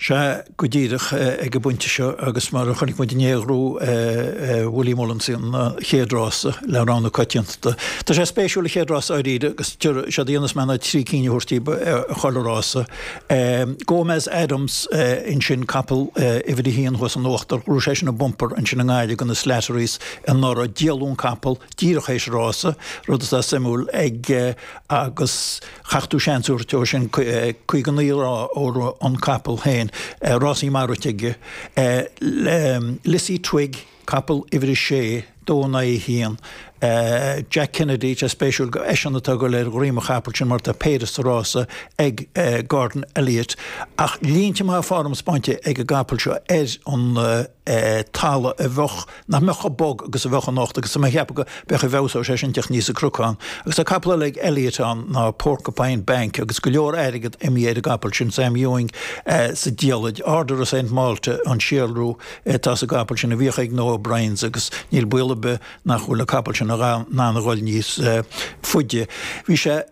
Sea, go díreach ag an bpointe seo agus mar a chonaic muid inné ghnóthaigh Willie Mullins an chéad rása le rogha na coitianta, tá sé spéisiúil sa chéad rása dáiríre agus séard a dhéanfas mé ná trí cinn a thabhairt daoibh i chuile rása. Gomez Addams, ansin capall uimhir a haon thuas in uachtar, rith sé sin i mbumper ansin i nGaillimh do na Slatterys anuraidh, díoladh an capall, díreach théis an rása, rud atá suimiúil ag agus, Caithfidh tú seans a thabhairt dó sin, caoga naoi lá ó rith an capall féin. Rásaí maithe rite aige. Lizzie Twigg, capall uimhir a sé, dó in aghaidh a haon. Jack Kennedy, tá spéisiúil gur eisean atá ag dul ar dhroim an chapaill sin mar tá péire sa rása ag Gordon Elliott. Ach línte maithe foirm spáinte ag an gcapall seo ar an talamh a bheadh. nach mbeadh chomh bog agus a bheadh anocht agus tá mé ag ceapadh go mb'fhéidir go bhfeabhsóidh sé sin ag teacht aníos an cnocán agus tá capall eile ag Elliott ann ná Porcupine Bank agus go leor airgead imithe ar an gcapall sin Sam Ewing sa diallait Order of Saint Malta an síolrú atá sa gcapall sin a bhíodh ag na O'Briens agus níl baol ar bith nach bhfuil an capall sin in ann dhul níos faide. Bhí sé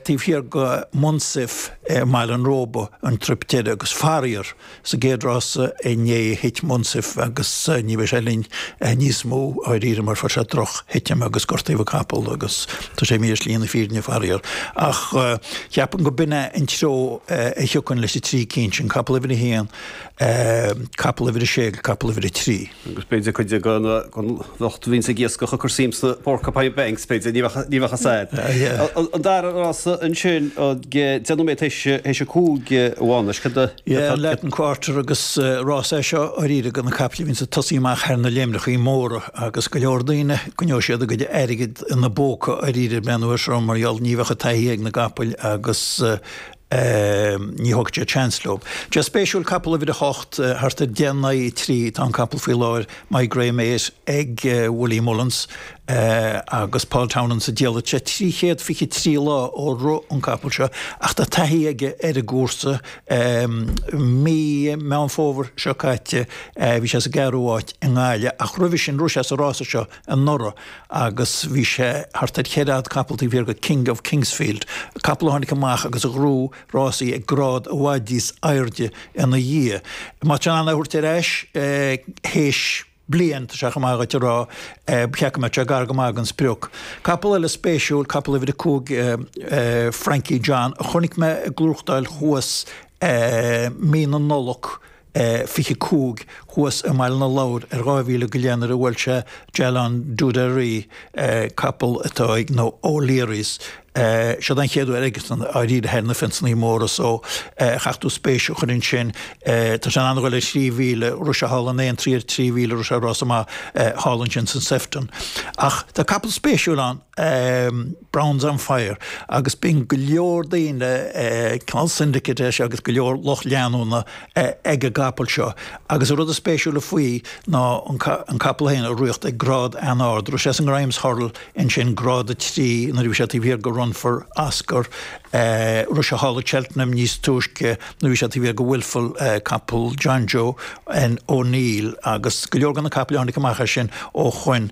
taobh thiar de Munsif i mBaile an Róba an trip deiridh agus faraor Sa gcéad rása inné thit Munsif agus ní bheidh sé linn níos mó, dháiríre, mar fuair sé drochthitim agus gortaíodh an capall agus tá sé imithe ar shlí na fírinne faraor. Ach cheapfainn gur b'in é an treo a thiocfainn leis an trí cinn sin, capall uimhir a haon, capall uimhir a sé agus capall uimhir a trí. Agus b'fhéidir cuid den lucht a bhíonns ag iascach ag cur suim sna porcupine banks, b'fhéidir, ní bheadh, ní bheadh a fhios agat. An dara rása ansin, deich nóiméad théis, théis a cúig a Mhánuis, cad a. Yeah, an Latin Quarter agus rás é seo dháiríre do na caiple a bhíonns ag tosaí amach thar na léimneachaí móra agus go leor daoine, coinneoidh siad a gcuid airgid ina bpóca dháiríre b'fhéidir an uair seo mar gheall, ní bheadh an taithí ag na gcapaill agus, ní thógfaidh siad seans leo. Tá sé spéisiúil capall uimhir a hocht thart ar deich in aghaidh a trí atá an capall faoi láthair My Great Mate ag Willie Mullins agus Paul Townend sa diallait sé trí chéad fiche trí lá ó rith an capall seo ach tá taithí aige ar an gcúrsa mí Meán Fómhair seo caite bhí sé sa gceathrú áit i nGaillimh ach roimhe sin rith sé sa rása seo anuraidh agus bhí sé thart ar cheithre fhad capaill taobh thiar de King of Kingsfield, capall a tháinig amach agus a ghnóthaigh rásaí ag grád i bhfad níos airde ina dhiaidh. Má tá sé in ann é a thabhairt ar ais théis bliain, tá sé chomh maith dhuit a rá, ba cheart go mbeadh sé gar go maith don sprioc. Capall eile spéisiúil, capall uimhir a cúig Frankie John, a chonaic mé ag gnóthachtáil thuas mí na Nollag, 25 thuas i mBaile na Lobhar ar 2 mhíle go leith nuair a bhuail sé Jalon D'oudairies, capall atá ag na O'Learys. Siod an chéad uair aige dáiríre thar na fenceannaí móra so caithfidh tú spéis a chur ann sin. Tá sé in ann dhul ar thrí mhíle, rith sé thall in Aintree trí mhíle, rith sé rása maith thall ansin san Sefton. Ach tá capall spéisiúil ann. um Bowensonfire agus bíonn go leor daoine cineál syndicate leis agus go leor lucht leanúna ag an gcapall seo. Agus an rud is spéisiúla faoi ná an capall féin ag ritheacht ag grád an-ard. Rith sé san Grimes Hurdle ansin, grád a trí, nuair a bhí sé taobh thiar de Run for Oscar. Rith sé thall i Cheltenham níos túisce nuair a bhí sé taobh thiar de Wilful, capall Jonjo O'Neill, agus go leor de na capaill a tháinig amach as sin ó shoin.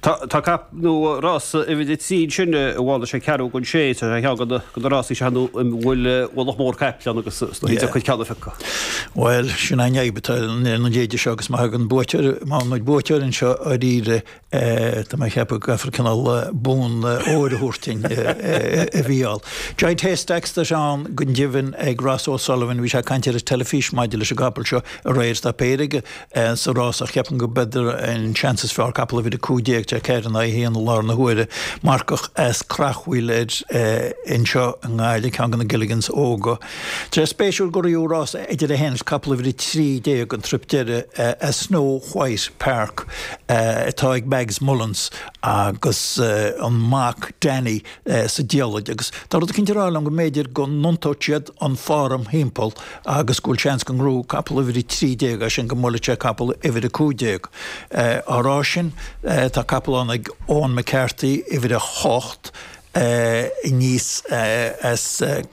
Tá cap nó rása uimhir a trí ansin i bhfad, is é ceathrú don sé is é ceann de na rásaí sin ina bhfuil ualach mór caiple ann agus is deacair dhuit ceann a phiocadh. Bhuel, sin an fhadhb atá ar na déideanna seo agus má thagann buaiteoir, má thagann buaiteoir anseo dáiríre tá mé ag ceapadh go gcaithfear cineál bonn óir a thabhairt dúinn. Bhuel. Giant Haystacks atá ann go deimhin ag Ross O'Sullivan, bhí sé ag caint ar an teilifís maidir leis an gcapall seo aréir, tá péire aige sa rás ach ceapaim go mb'fhéidir an seans is fearr capall uimhir 15 tá ceathair in aghaidh a haon i láthair na huaire. Marcach as Creachmhaoil air anseo i nGaillimh, ceann de na Gilligans óga. Tá sé spéisiúil go raibh rás idir é féin is capall uimhir 13 an trip deireadh as Snow White Park atá ag Mags Mullins agus an mac Danny, sa diallait agus tá rud eicínt ag rá liom go mb'fhéidir go n-iontóidh siad an fhoirm thimpeall agus go bhfuil seans go ngnóthóidh capall uimhir 13 é sin, go mbuailfidh sé capall uimhir 15. Á rá sin, tá capall ann ag Eoin McCarthy, uimhir 8, aníos as.